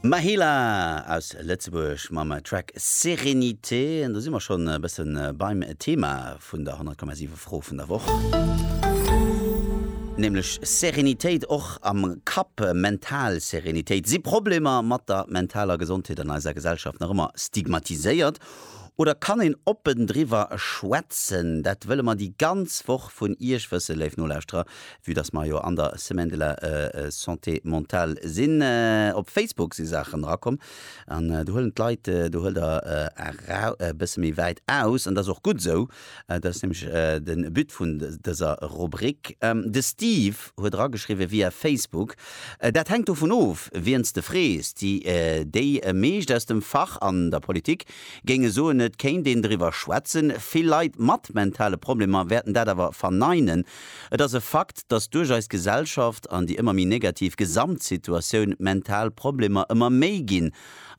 Mahela aus Lëtzebuerg mam Track Sérénité. An do si mer schonn e bësse beim Thema vun der 100,7 Fro vun der Woch. Nämlech Sérénitéit och am Kapp, mental Sérénitéit. Si Problemer mat der mentaler Gesondheet an eiser Gesellschaft nach ëmmer stigmatiséiert oder kann een oppen driwwer schwätzen? Dat wëlle mer déi ganz Woch vun Iech wëssen, léif Nolauschterer. Vue dass mer jo an der Semaine de la Santé Mentale sinn, op Facebook si Saachen erakomm an do huelen d'Leit, do huelt Der erau, e bësse méi wäit aus an dat ass och gutt esou, dat ass nämlech de But vun dëser Rubrik. De Steve huet erageschriwwen via Facebook, Dat hänkt dovun of, wien s de frees. Déi, déi meescht aus dem Fach an der Politik géinge soen, et kéint een driwwer schwätzen. Vill Leit mat mentale Problemer wäerten dat awer verneinen, Et ass e Fakt, dass duerch eis Gesellschaft an déi ëmmer méi negativ Gesamtsituatioun d'mental Problemer ëmmer méi ginn,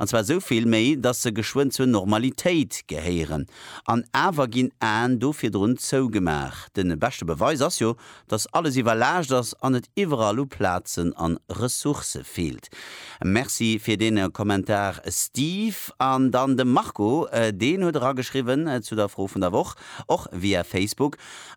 an zwar esou vill méi, dass se geschwënn zur Normalitéit gehéieren. An awer ginn Aen do virdrun zougemaach. De beschte Beweis ass jo, dass alles iwwerlaascht ass an et iwwerall u Plazen an Ressourcë feelt. Merci fir dee Kommentar Steve. An dann de Marco, deen huet erageschriwwen zu der Fro vun der Woch, och via Facebook,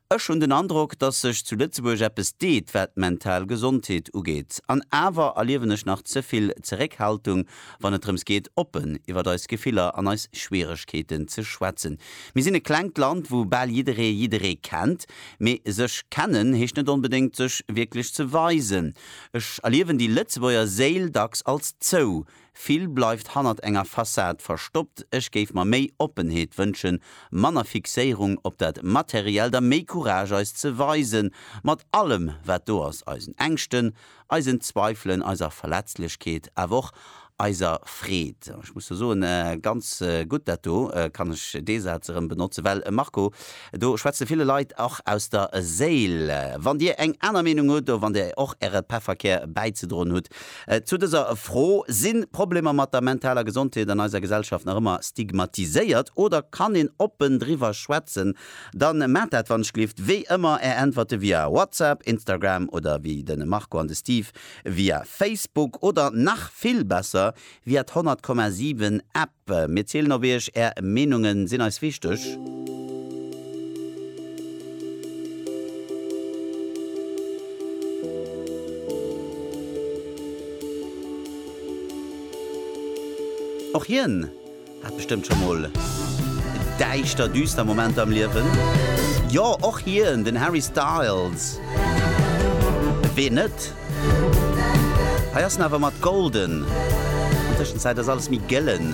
Ech hunn den Androck, dass sech zu Lëtzebuerg eppes deet, wat d'mental Gesondheet ugeet. An awer erliewen ech nach ze vill Zeréckhaltung, wann et drëms geet, oppen iwwert eis Gefiller an eis Schwieregkeeten ze schwätzen. Mir sinn e klengt Land, wou bal jidderee jidderee kennt. Mee sech kennen heescht net onbedéngt, sech wierklech ze weisen. Ech erliewen déi Lëtzebuerger Séil dacks als zou, Vill bleift hannert enger Fassad verstoppt. Ech géif mer méi Oppenheet wënschen, manner Fixéierung op dat Materiellt a méi Courage eis ze weisen, mat allem wat do ass, eisen Ängschten, eisen Zweifelen, eiser Verletzlechkeet, awer och eiser Freed. Ech muss do soen, ganz gutt dat do, kann ech dee Saz erëm benotzen, well Marco, Do schwätze ville Leit och aus der Séil. Wann Dir eng aner Meenung hutt oder wann Dir och Äre Pefferkär bäizedroen hutt zu dëser Fro, Sinn Problemer mat der mentaler Gesondheet an eiser Gesellschaft nach ëmmer stigmatiséiert oder kann een oppen driwwer schwätzen? Dann maacht dat wanschlift wéi ëmmer. Är Äntwerte via WhatsApp, Instagram oder wéi den Marco an de Steve via Facebook oder nach vill besser via d'Honnertkomma sieben App. Mir zielen op Iech, Är Meenungen sinn eis wichteg. Och hien hat bestëmmt scho mol däischter, düster Momenter am Liewen. Jo, och hien, den Harry Styles, ween net? Hei ass en awer mat golden. An Tëschenzäit ass alles méi gëllen.